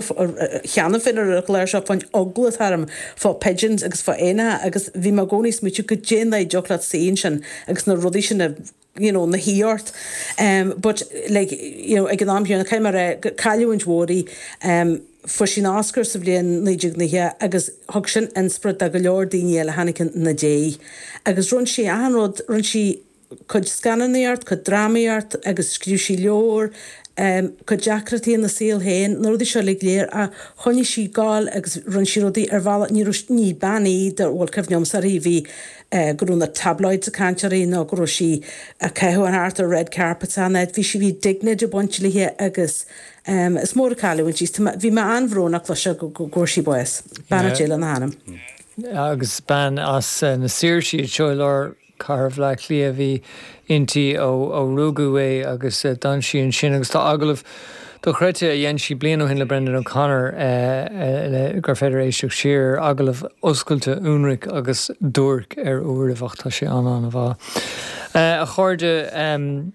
cheana féin ar an gclár seo fán eagla atá orm, fá pigeons agus fá éanacha agus bhí mé i gcónaí ag smaoitiú goidé an dóigh a dtiocfadh leat suí ansin agus na rudaí sin a, you know, ina suí ort em but like, you know, ag an am chéanna caithfidh mé a rá gur cailliúint mhór í em fuair sí an Oscar sa bhliain naoi déag nócha agus thug sin inspiorad do go leor daoine eile a tháinig ina diaidh agus rinne sí achan rud, rinne sí. cuid scannánaíocht, cuid drámaíocht agus scríobh sí leabhar, cuid deacrachtaí ina saol féin, na rudaí seo uilig léir ach choinnigh sí ag gabháil agus rinne sí rudaí ar bhealach, ní raibh, ní bean í a bhfuil cuimhne agamsa uirthi go raibh na tabloids ag caint uirthi nó go raibh sí ag caitheamh an thart ar red carpets ann, eh bhí sí, bhí dignity ag baint léi agus em is mór an cailliúint í, bhí mé an-bhrónach leis seo go bhfuair sí bás, beannacht Dé lena hanam. Agus bean as na Saoirsí, anseo i lár. Cathair Bhleá Cliath a bhí inti ó rugadh í agus d'fhan sí ansin agus tá agallamh dochreidte a dhein sí bliain ó shin le Brendan O'Connor le gur féidir éisteacht siar, agallamh oscailte, ionraic agus duairc ar uairibh ach tá sé an-an-mhaith. A chairde.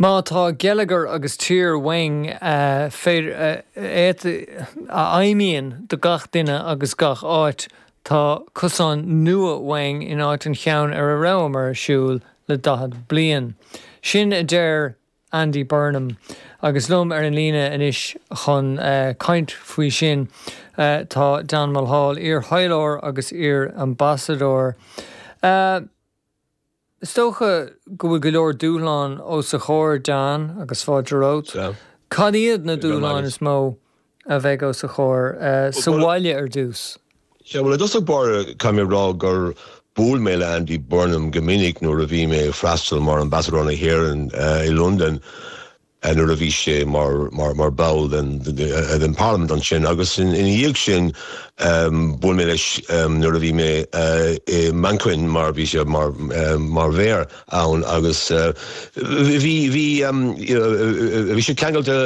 Má tá geilleagar agus tír uainn a fheidhmíonn do gach duine agus gach áit, tá cosán nua uainn in áit an cheann ar a rabhamar ag siúl le daichead bliain. Sin a deir Andy Burnham agus liom ar an líne anois chun caint faoi sin tá Dan Mulhall, iar-thaidhleoir agus iar-ambasadóir. Is dócha go bhfuil go leor dúshlán os a chomhair Dan agus fáilte romhat. Cad iad na dúshláin is mó a bheidh os a chomhair, sa bhaile ar dtús? Sea, bhuel, i dtosach báire, caithfidh mé a rá gur bhuail mé le Andy Burnham go minic nuair a bhí mé ag freastal mar Ambasadóir na hÉireann i Londain. Nuair a bhí sé mar bhall den Pharlaimint ansin agus ina dhiaidh sin bhuail mé leis nuair a bhí mé i Manchain mar bhí sé mar mhéara ann agus bhí bhí sé ceangailte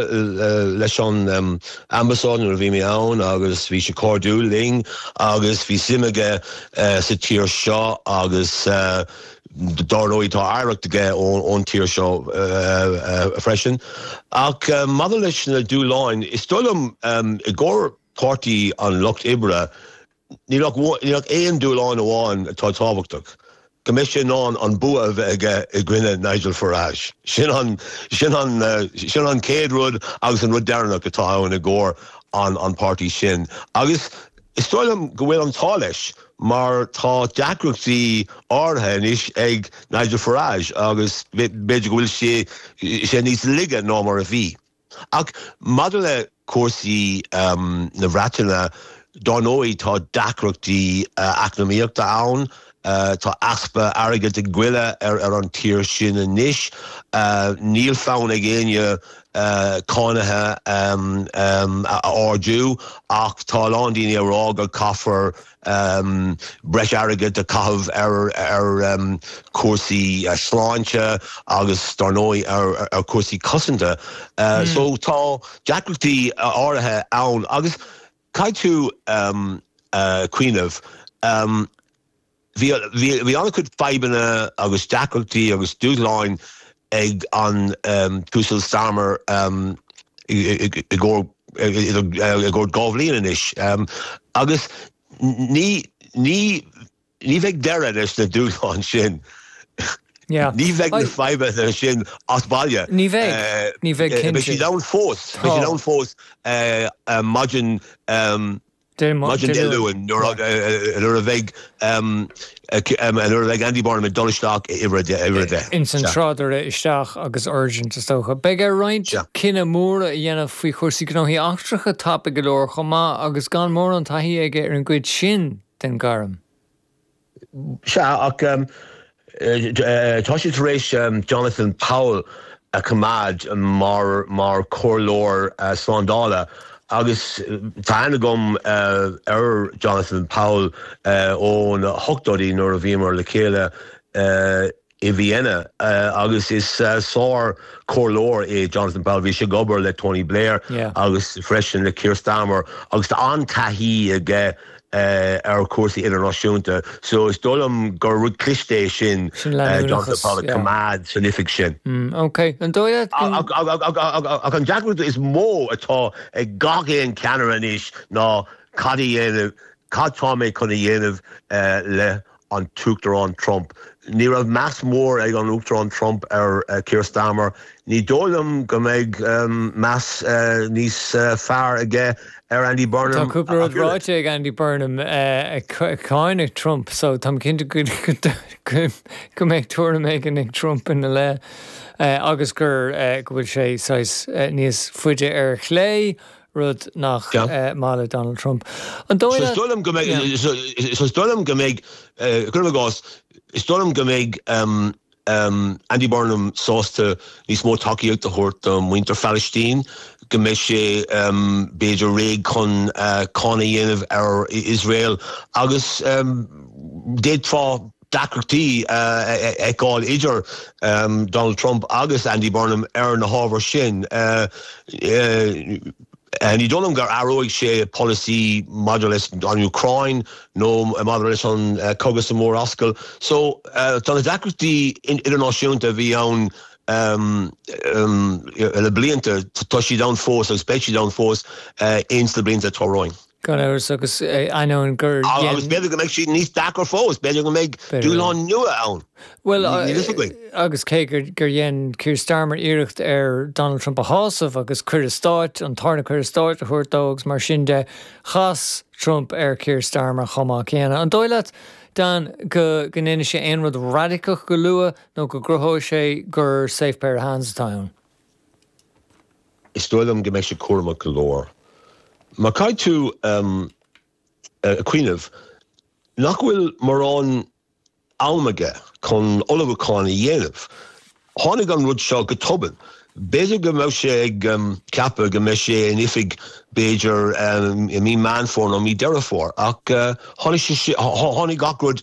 leis an Ambasáid nuair a bhí mé ann agus bhí sé cairdiúil linn agus bhí suim aige sa tír seo agus Dár ndóigh, tá oidhreacht aige ón tír seo freisin. Ach maidir leis na dúshláin, is dóigh liom, i gcomhair Páirtí an Lucht Oibre, níl ach aon dúshlán amháin atá tábhachtach, go mbeidh sé in ann an bua a bheith aige i gcoinne Nigel Farage. Sin an, sin an, sin an chéad rud agus an rud deireanach atá ann i gcomhair an pháirtí sin. Is dóigh liom go bhfuil an t-ádh leis mar tá deacrachtaí áirithe anois ag Nigel Farage agus b'fhéidir go bhfuil sé níos laige ná mar a bhí. Ach maidir le cúrsaí na Bhreataine, dar ndóigh tá deacrachtaí eacnamaíochta ann, Tá easpa airgid ag goilleadh ar an tír sin anois. Níl fonn ag éinne cánacha a ardú ach tá a lán daoine ag rá go caithfear breis airgid a caitheamh ar chúrsaí sláinte agus dar ndóigh ar chúrsaí cosanta. So tá deacrachtaí áirithe ann agus Caithfidh tú cuimhneamh, bhí an-chuid fadhbanna agus deacrachtaí agus dúshláin ag an tUasal Starmer i gcaitheamh dhá bhliain anois agus ní, Ní bheidh deireadh leis na dúshláin sin. Ní bheidh na fadhbanna sin as baile. Ní bheidh. Beidh siad ann fós maidin Dé Luain nuair a bheidh nuair a bheidh Andy Burnham ag dul isteach i Uimhir 10. Ins an tráidire isteach agus urgent is dócha. Beidh air roinnt cinntí móra a dhéanamh faoi chúrsaí gnóthaí eachtracha tapaidh go leor chomh maith agus gan mórán taithí aige ar an gcuid sin de den ghairm. Sea, ach tá siad tar éis Jonathan Powell a choimeád mar chomhairleoir slándála agus tá aithne agam ar Jonathan Powell ó na hochtóidí nuair a bhíomar le chéile i i Vienna agus is sár comhairleoir é Jonathan Powell. Bhí sé ag obair le Tony Blair agus freisin le Keir Starmer agus tá an-taithí aige ar chúrsaí idirnáisiúnta. So is dóigh liom gur rud cliste é sin Jonathan Powell a choimeád san oifig sin. Ach an deacracht is mó atá ag gach aon cheannaire anois ná cad a dhéanamh, cad tá mé chun a dhéanamh le an tUachtarán Trump. Ní raibh meas mór ag an Uachtarán Trump ar Keir Starmer, ní dóigh liom go mbeidh meas níos fearr aige ar Andy Burnham. Tá cúpla rud ráite ag Andy Burnham ag cáineadh Trump so táim cinnte go mbeidh tuairim éigin ag Trump ina leith agus gur go bhfuil sé saghas níos faide ar chlé. rud nach maith le Donald Trump. So, is dóigh liom go mbeidh, cuirim i gcás, is dóigh liom go mbeidh Andy Burnham sásta níos mó tacaíocht a thabhairt do mhuintir Phalaistín, go mbeidh sé b'fhéidir réidh chun cáineadh a dhéanamh ar Iosrael agus d'fhéadfá, deacrachtaí a fheiceáil idir Donald Trump agus Andy Burnham ar na hábhair sin. Ní dóigh liom go n-athróidh sé polasaí maidir leis an Úcráin nó maidir leis an gcogadh sa Mhurascaill. So, tá na deacrachtaí idirnáisiúnta a bhí ann le blianta, tá siad ann fós agus beidh siad ann fós ins na blianta atá romhainn. Gan amhras, agus ainneoin gur dhein. Agus b'fhéidir go mbeidh siad níos deacra fós, b'fhéidir go mbeidh dúshláin nua ann. Bhuel, agus cé gur dhein Keir Starmer iarracht ar Donald Trump a shásamh agus cuireadh stáit, an tarna cuireadh stáit a thabhairt dó agus mar sin de, chas Trump ar Keir Starmer chomh maith céanna. An dóigh leat, Dan, go ndéanfaidh sé aon rud raidiceach go luath nó go gcruthóidh sé gur safe pair of hands atá ann? Is dóigh liom go mbeidh sé cúramach go leor. Mar caithfidh tú cuimhneamh nach bhfuil mórán am aige chun ullmhúchán a dhéanamh. Tháinig an rud seo go tobann. B'fhéidir go mbeadh sé ag ceapadh go mbeidh sé in oifig b'fhéidir i mí Meán Fómhair nó mí Deireadh Fómhair ach tháinig sé, tháinig gach rud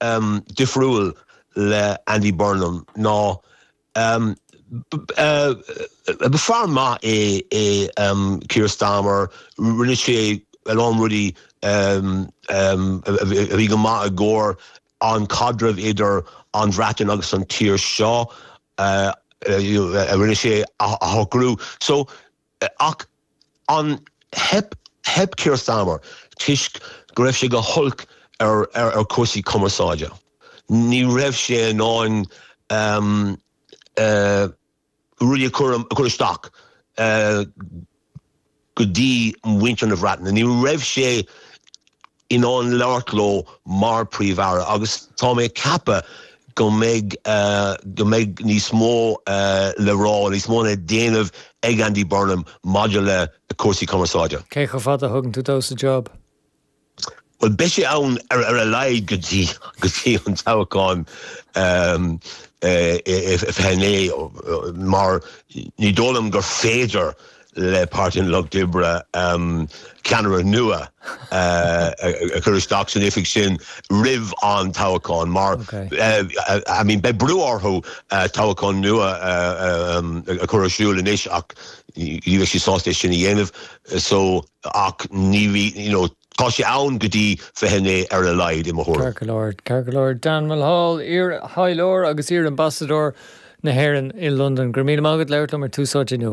um difriúil le Andy Burnham ná um ba fear maith é é um Keir Starmer, rinne sé a lán rudaí um um a bhí go maith i gcomhair an caidreamh idir an Bhreatain agus an tír seo, uh you know rinne sé a shocrú. So. Ach theip Keir Starmer toisc go raibh sé go holc ar chúrsaí cumarsáide? Ní raibh sé in ann rudaí a chur amach go dtí muintir na Bhreataine. Ní raibh sé in ann labhairt leo mar Príomh-Aire agus tá mé ag ceapadh go mbeidh go mbeidh níos mó le rá, níos mó le déanamh ag Andy Burnham maidir le cúrsaí cumarsáide. Cé chomh fada a thugann tú dó sa jab? Bhuel, beidh sé ann ar a laghad go dtí go dtí an toghchán i 29 mar ní dóigh liom gur féidir le Páirtí an Lucht Oibre ceannaire nua a chur isteach san oifig sin roimh an toghchán mar I mean beidh brú orthu toghchán nua a chur ar siúl anois ach ní bheidh siad sásta é sin a dhéanamh so ach ní bheidh, you know, tá sé ann go dtí 29 ar a laghad i mo thuairim. Ceart go leor, ceart go leor. Dan Mulhall, iar-thaidhleoir agus iar-ambasadóir na hÉireann i Londain, go raibh míle maith agat labhairt liom ar Tús Áite inniu.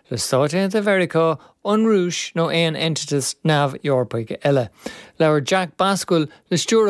le Stáit Aontaithe Mheiriceá, an Rúis nó aon eintitis neamh-Eorpaigh eile. Labhair Jack Bascuel le Stiúrthóir.